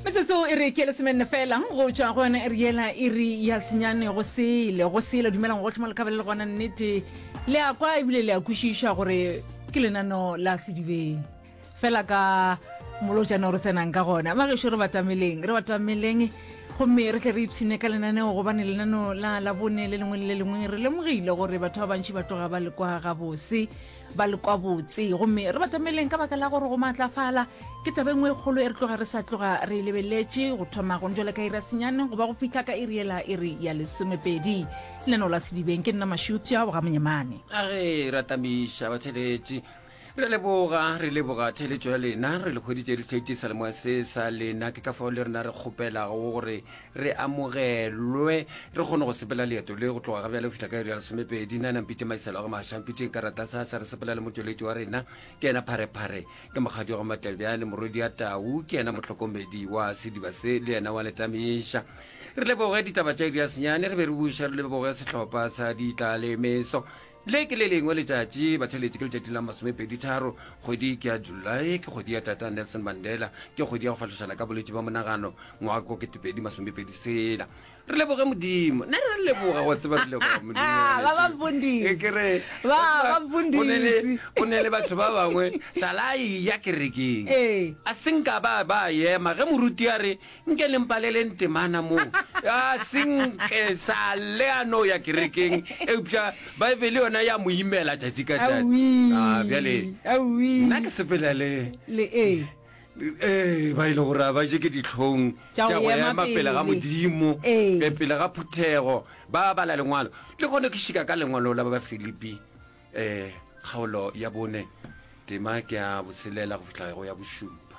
metsotso e re ke lesomenne fela go tšwa go yone e re yela e re ya senyane go sele go sele dumelang gotlhe mo lekabele le gona nnete le a kwa ebile le a kwešiša gore ke lenano la sedibeng fela ka molojana o re tsenang ka gona bagešo re batameleng re batameleng gomme re tle re ipshine ka lenaneo gobane lenaneo la labone le lengwe le le lengwe re lemogile gore batho ba bantši ba tloga ba le kwa gabose ba le kwa botse gomme re batameleng ka baka la gore go maatlafala ke taba engwe e kgolo e re tloga re sa tloga re e lebeletse go thoma gone jale ka irasenyane goba go fitlha ka iriela e re ya lesomepedi leno la sedibeng ke nna mašutša boga monyemane a re ratamiša batheletši re leboga re leboga theletšo ya lena re le kgweditše re tlhaitisa lemoya se sa lena ke ka fao le rena re kgopelago gore re amogelwe re kgone go sepela leeto le go tloga ga bjale go fihla ka iri ya lesomepedi na nampitše maiselo a go maša mpitšeng ka rata sa sa re sepela le motšweletši wa rena ke ena pharephare ke mokgadi wa go matlebja le morwedi ya tau ke ena motlhokomedi wa sediba se le ena wa letamiša re leboge ditaba tša iri ya senyane re be re buša re leboge sehlopha sa ditlalemeso Le ke le lengwe letšatši, batheletši, ke letšatši la masomepeditharo, kgwedi ke ya Julae, ke kgwedi ya Tata Nelson Mandela, ke kgwedi ya go fahlošana ka bolwetši ba monagano, ngwaga ko ketepedi masomepedi sela. Re leboge Modimo. Ne re leboga go tseba re leboga Modimo. Ke re, go ne le batho ba bangwe, salai ya kerekeng. A senka ba ba yema, ge moruti a re, Nke le mpaleleng temana moo a senke sa le a no ya kerekeng eupša baebele yona ya mo imela tšatši ka tšatši Ah, bjale awi nna ke sepela le le e ee ba e le gore a ba je ke ditlhong Tša go tša go ema ema pele ga pele. modimo Ee. be pele ga phuthego ba bala lengwalo le kgone ke šika ka lengwalo la ba ba filipi um kgaolo ya bone tema ke ya boselela go fihla go ya bošupa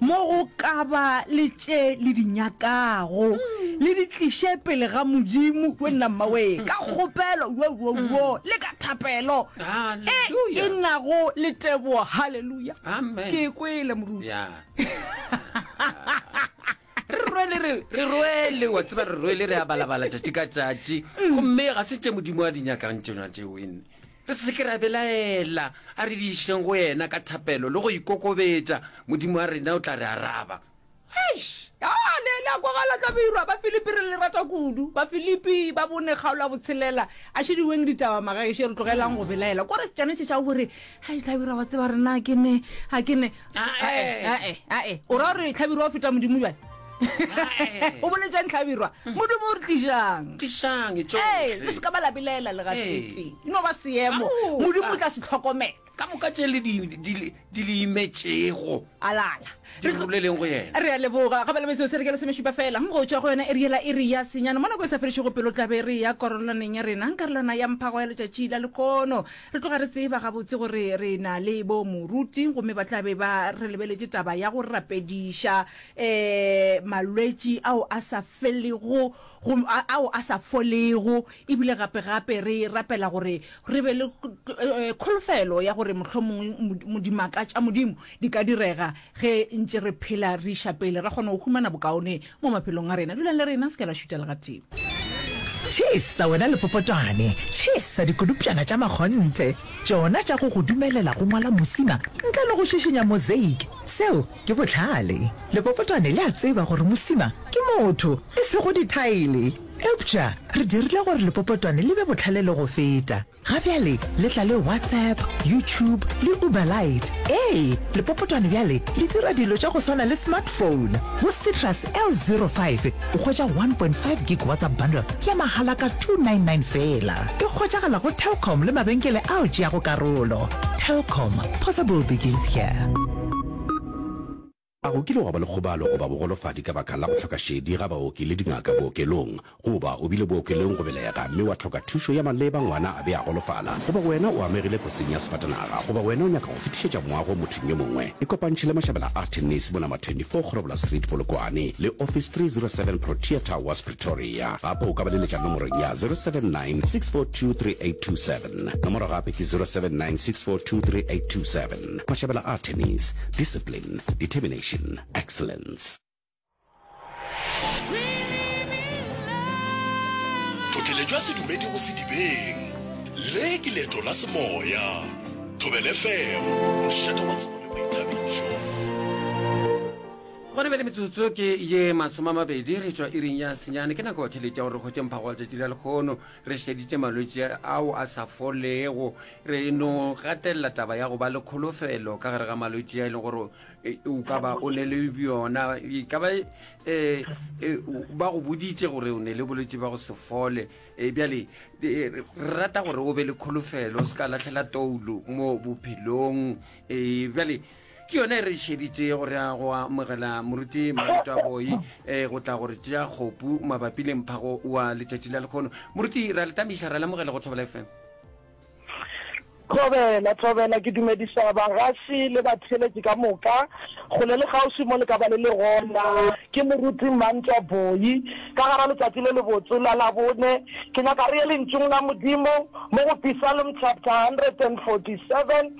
mo go ka ba le tše le di nyakago le di tliše pele ga modimo we nna mmawee ka kgopelo wowowo le ka thapelo e Hallelujah. e nago le tebogo halleluja Amen. ke kwele moruti ya re rwele re re rwele wa tseba re rwele re a balabala tšatši ka tšatši gomme ga se tše modimo a di nyakang tšona tšeo ene Re se ke ra belaela, a re di išeng go yena ka thapelo le go ikokobetša, Modimo wa rena o tla re araba. Eish! Ya le, le a kwagala, tla beirwa. Bafilipi re le rata kudu. Bafilipi ba bone kgaolo ya botshelela. A šediweng ditaba, magaešo, re tlogelang go belaela. Ko re tsone tše tša go re, Hai, Tlhabirwa, wa tseba, rena ke ne, a ke ne. Ae, ae, ae, ae, o ra gore Tlhabirwa o feta Modimo bjale? o boletša ntlhabirwa modumo o re tlišang tlišang ee tsohle le se ka ba labilaela le gatete Ee. no ba seemo Ka moka. modimo o tla se tlhokomela ka moka tše le di- di- di- di le imetšego alala di roleleng go yena re a leboga gape le metseo se re ke lesomešupa fela go tšwa go yona e riela e re ya senyana mo nako e sa fedišego pelo tlabe re ya karololaneng ya rena ka lona ya mphago ya letšatši la lekono re tloga re tseba gabotse gore re na le bo moruti gomme ba tlabe ba re lebeletše taba ya go rapediša um malwetši ao a sa felego go ao a sa folego ebile gape gape re rapela gore re be le kholofelo ya gore mohlomongwe dimaka tša modimo di ka direga ge ntše re phela re iša pele ra kgona go humana bokaone mo maphelong a rena dulang le rena se ke la šuta legatimo Tšhesa wena lepopotwane, tšhesa dikodupšana tša makgonthe, tšona tša go go dumelela go ngwala mosima ntle le go šišinya mozeiki. Seo Ke bohlale. Lepopotwane le a tseba gore mosima ke motho, e sego dithaele. Eupša re dirile gore lepopotwane le be bohlale le go feta. Ga bjale le tla le WhatsApp, YouTube le Uberlite. Ee, lepopotwane bjale le dira dilo tša go swana le smartphone. Go Citrus L05 o hwetša one point five gig WhatsApp bundle ya mahala ka two nine nine feela. E hwetšagala go Telkom le mabenkele ao tšeago karolo. Telkom, possible begins here. A go kile gwa ba le kgobalo goba bogolofadi ka baka la go hloka šedi ga baoki le dingaka bookelong? Goba o bile bookelong go belega mme wa hloka thušo ya maleba, ngwana a be a golofala? Goba wena o amegile kotsing ya sefatanaga? Goba wena o nyaka go fetišetša moago mothong yo mongwe? Ikopantšhe le Mashabela a Tennis mo Number 24 Kgorobola Street, Polokwane, le Office 307 Protea Towers, Pretoria. Gape o ka ba leletša nomorong ya 079 642 3827. Nomoro gape ke 079 642 3827. kwa šebela artemis discipline determination excellence tlhotlhele jwa sedumedi go sedibeng le ke leeto la semoya thobele fm mošata wa tsebo le boithabišo Gone bjale metsotso ke ye masome a mabedi re tšwa iring ya senyane ke nako theletša gore re hwetše mphago wa letšatši la lekgono Re šeditše malwetši ao a sa folego. Re no gatelela taba ya go ba le kholofelo ka gare ga malwetši a e leng gore e, o ka ba o ne le bjona. E ka ba e, e, ba go boditše gore o ne le bolwetši ba go se fole. E, bjale e, re rata gore o be le kholofelo, o se ka latlhela toulo mo bophelong. E, bjale Ke yona e re šeditše go re a go amogela moruti Mareto a Boi e go tla gore tšea kgopu mabapi le mphago wa letšatši la lekgono. Moruti ra le tamiša ra le amogela go Thobela FM. Thobela, Thobela, ke dumediša bagasi le batheeletši ka moka. Kgole le kgauswi mo le ka ba le le gona, ke Moruti Mantwa Boi. Ka gara letšatši le lebotse la Labone, ke nyaka re ye Lentšung la Modimo mo go Psalm chapter 147,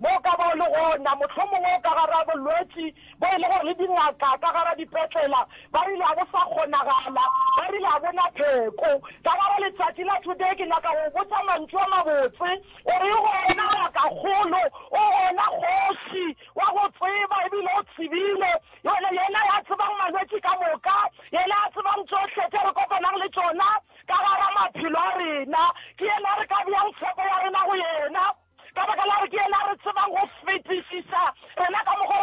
bo ka ba o le gona, mohlomongwe o ka gara bolwetši bo e le gore le dingaka ka gara dipetlela ba rile a bo sa kgonagala, ba rile a bo na pheko. Ka gare letšatši la today ke nyaka go botša mantšu a mabotse, o re o gona ngakakgolo, o gona kgoši, wa go tseba ebile o tsebile, yona yena ya tsebang malwetši ka moka, yena ya tsebang tšohle tše re kopanang le tšona, ka gare maphelo a rena. Ke yena re ka beyang tshepo ya rena go yena, ka baka la gore ke yena re tsebang go fetišisa rena ka mokgwa re